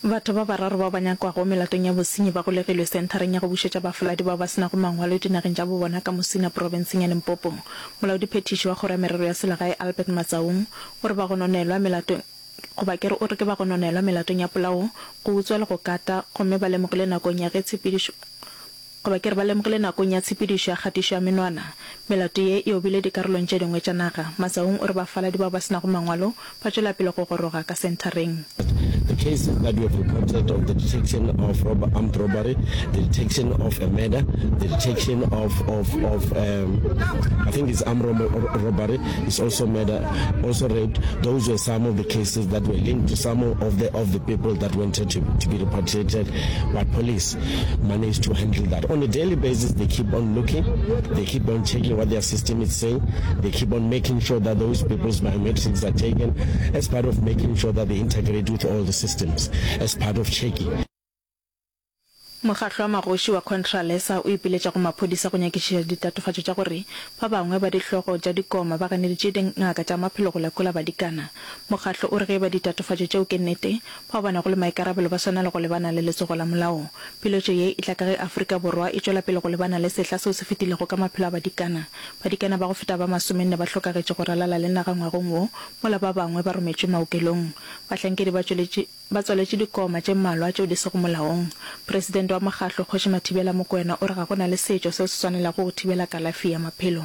Batho ba bararo bao ba nyakwago melatong ya bosenyi ba golegilwe Senthareng ya go Bušetša Bafaladi bao ba se nago Mangwalo dinageng tša bo bona ka Musina profenseng ya Limpopo. Molaodiphethiši wa Kgoro ya Merero ya Selegae Albert Matsaung o re ba gononelwa melatong goba ke re o re ke ba gononelwa melatong ya polao, go utswa le go kata gomme ba lemogile nakong ya ge tshepedišo Goba ke re ba lemogile nakong ya tshepedišo ya kgatišo ya menwana. Melato ye e obile dikarolong tše dingwe tša naga. Masaung o re bafaladi bao ba se nago mangwalo ba tšwela pele go goroga ka senthareng. The cases that we have reported of the detection of rob armed robbery, the detection of a murder, the detection of of of um, I think it's armed rob robbery, it's also murder, also rape. Those were some of the cases that were linked to some of the of the people that wanted to, to be repatriated by police. Money is to handle that. On a daily basis, they keep on looking, they keep on checking what their system is saying, they keep on making sure that those people's biometrics are taken as part of making sure that they integrate with all the systems, as part of checking. Mokgatlo wa magoši wa Contralesa o ipiletša go maphodisa go nyakišiša ditatofatšo tša gore ba bangwe ba dihlogo tša dikoma ba ganeditše dingaka tša maphelo go lekola badikana. Mokgatlo o re ge e ba ditatofatšo tšeo ke nnete, Ba bona go le maikarabelo ba swanela go lebana le letsogo la molao. Piletšo ye e tla ka ge Afrika Borwa e tšwela pele go lebana le sehla seo se fetilego ka maphelo a badikana. Badikana ba go feta ba masomenne ba hlokagetše go ralala le naga ngwagong wo, mola ba bangwe ba rometšwe maokelong. Bahlankedi ba tšweletše ba tswaletše dikoma tše mmalwa tšeo di sego molaong. Presidente wa Mokgatlo, Kgoši Mathibela Mokoena o re ga go na le setšo seo se swanelago go thibela kalafi ya maphelo.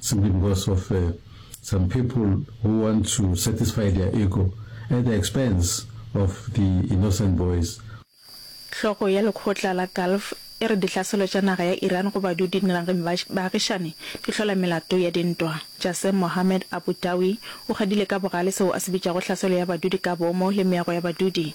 Simply because of some people who want to satisfy their ego at the expense of the innocent boys. Hlogo ya lekgotla la Gulf e re ditlhaselo tša naga ya Iran go badudi dinageng ba baagišani di hlola melato ya dintwa. Jasem Mohammed Abu Dawi o gadile ka bogale seo a se bitšago tlhaselo ya badudi ka boomo le meago ya badudi,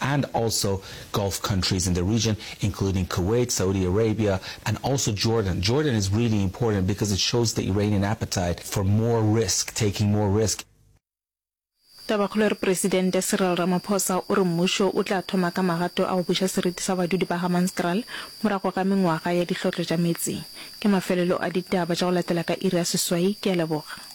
and also Gulf countries in the region including Kuwait, Saudi Arabia and also Jordan. Jordan is really important because it shows the Iranian appetite for more risk, taking more risk. Tabakgolo e re Presidente Cyril Ramaphosa o re mmušo o tla thoma ka magato a go buša seriti sa badudi ba Hammanskraal morago ga mengwaga ya dihlotlo tša meetse. Ke mafelelo a ditaba tša go latela ka iri ya seswai. Ke a leboga.